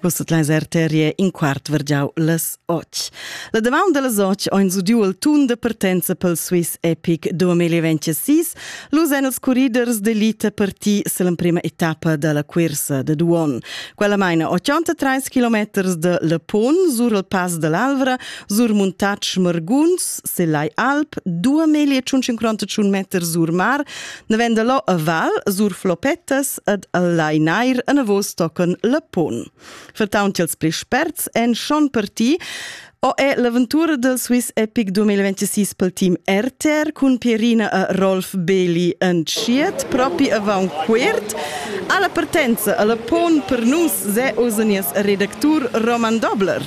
Vus tot leis arterie in quart vergiau las och. La deman de las och oins udiu il tun de partenza pel Swiss Epic 2026, l'usen els corriders de lita parti l'emprima etappa della cursa de Duon. Quella maina 83 km de Le Pont sur il Pass dell'Alvra, sur Muntatsch Marguns, se l'ai Alp, 2500 meters sur mar, ne vende lo a Val, sur Flopettas, ed el lai nair enavos tochen le pon. Vertaunt ils pli sperts en schon per ti o è l'aventura del Swiss Epic 2026 pel team RTR cun Pierina e Rolf Beli entschiet propi avant quert alla partenza alla pon per nus se osenias redactur Roman Dobler.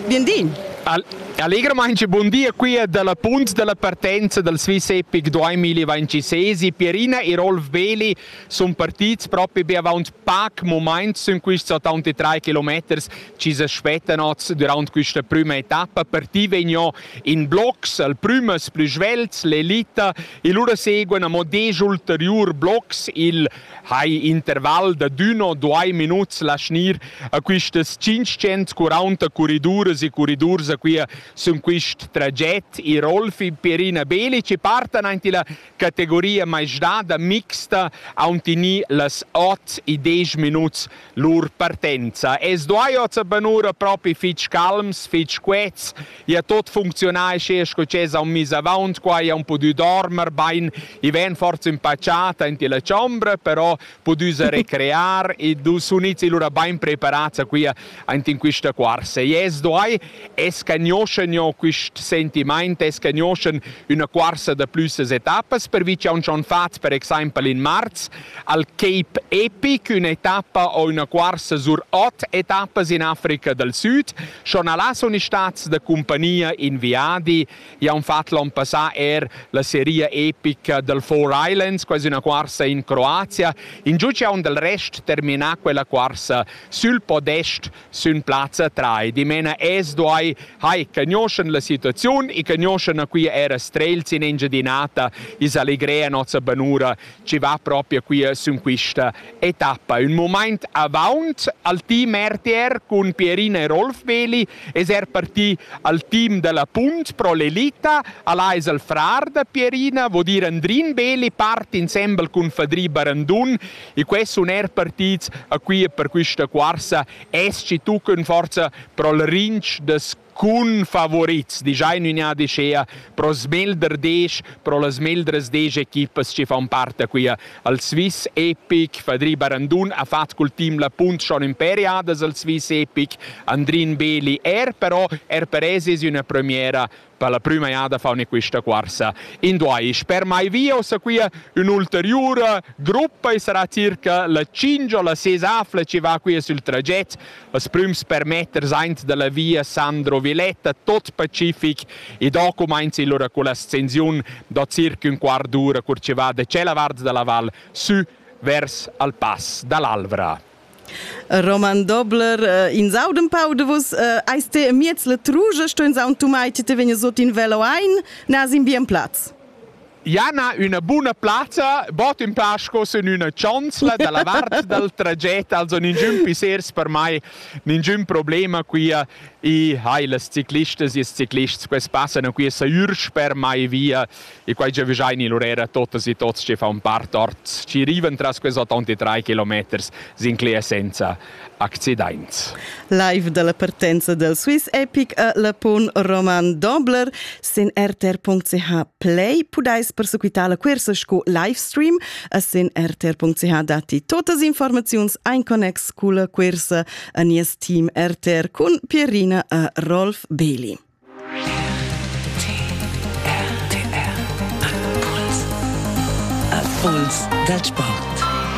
Bienvin! Al Allegramaince buon dia qui dalla punt dalla partenza dal Swiss Epic 2026 Pierina e Rolf Beli sun partits propi be avaunt pac mumaints sün quists 83 kilometers chi s'es spettanots durant quista prüma etappa. Parti vegno in blocs, al prümas plü svelts, l'elita, e lura seguan amo desch ulteriur blocs, il hai interval da d'uno duai minuts lasnir a quistas 540 corriduras e corridurs a quia sün quist traget. I Rolfi, Perina Belic e partan aint illa categoria maistrada mixta haun tini las ot e desch minuts lur partenza. Es duai ot banura propi fich calms, fich quets, ja tot funcziunai sche sco chesa un mis avaunt qua ja un pudü dormer bain, i ven forza impacciata in la chombra, però pudüsa recrear e du sunizzi lura bain preparats a quia aint in quista cuorsa. E es duai es cagnoscen jo quist sentimaint, es cagnoscen üna cuorsa da plüssas etappas, pervi cha uns on fats per exaimpel in marz al Cape Epic, ün'etappa o üna cuorsa sur ot etappas in Africa dal Süd. Schon là sun stats da cumpagnia in viadi Jau fatg l'onn passà er la seria epica dal Four Islands, quasi una cuorsa in Croazia. In giug jau dal rest terminà quella cuorsa sül podest sün plazza 3. Dimena es duai hai cagnoschen la situaziun e cagnoschen a qui era strelz in Engiadinata is allegrea nossa banura ci va proprio qui sun quista etappa. Un moment avant al team RTR con Pierina e Rolf Veli es er parti al team della Punt pro l'elita, alla es al frar da Pierina, vo dir Andrin Veli parti insembel con Fadri Barandun e que sun er partits a qui per quista cuarsa es ci tuccan forza pro il rinch des cun favorits, dischai ün'inadi schea pro smelder desch, pro las meldras desch equipas che fan part da quia. Al Swiss Epic, Fadri Barandun ha fat cul team la punt schon imperiadas al Swiss Epic, Andrin Beli er però er per es es üna premiera per la prüma jada faune quista cuorsa in duais. Per mai via o sa quia ün'ulteriura gruppa e sarà circa la 5 o la 6 afla che va quia sül traget. As prüms permetters aint da la via Sandro Viletta tot pacific e do cumainza illura con l'ascensiun da circa un quart d'ura cur chi va da tschella vart da la val sü vers al pass da l'Alvra. Roman Dobler, äh, in saud un pau de vus, äh, eis te miez le truge, sto in saun tumai, te vegna sot in velo ein, na sin bien platz. Jana, üna buna plazza, bod ün pa sco sün üna chanzla da la vart dal traget, also ninchün pissers per mai, ninchün problema quia. I hai las ciclistas e ils ciclists quels passan qui sajürs per mai via e quai giavüschaini lur era totas e tots che faun part ort, chi rivan tras quels 83 kilometers sincler senza accidaints. Live dalla partenza del Swiss Epic e la pun Roman Dobler sin rtr.ch Play pudais persequitar la cuorsa sco livestream e sin rtr.ch datti totas informaziuns ein connex culla cuorsa a nies team RTR cun Pierina e Rolf Beli. Impuls dal sport.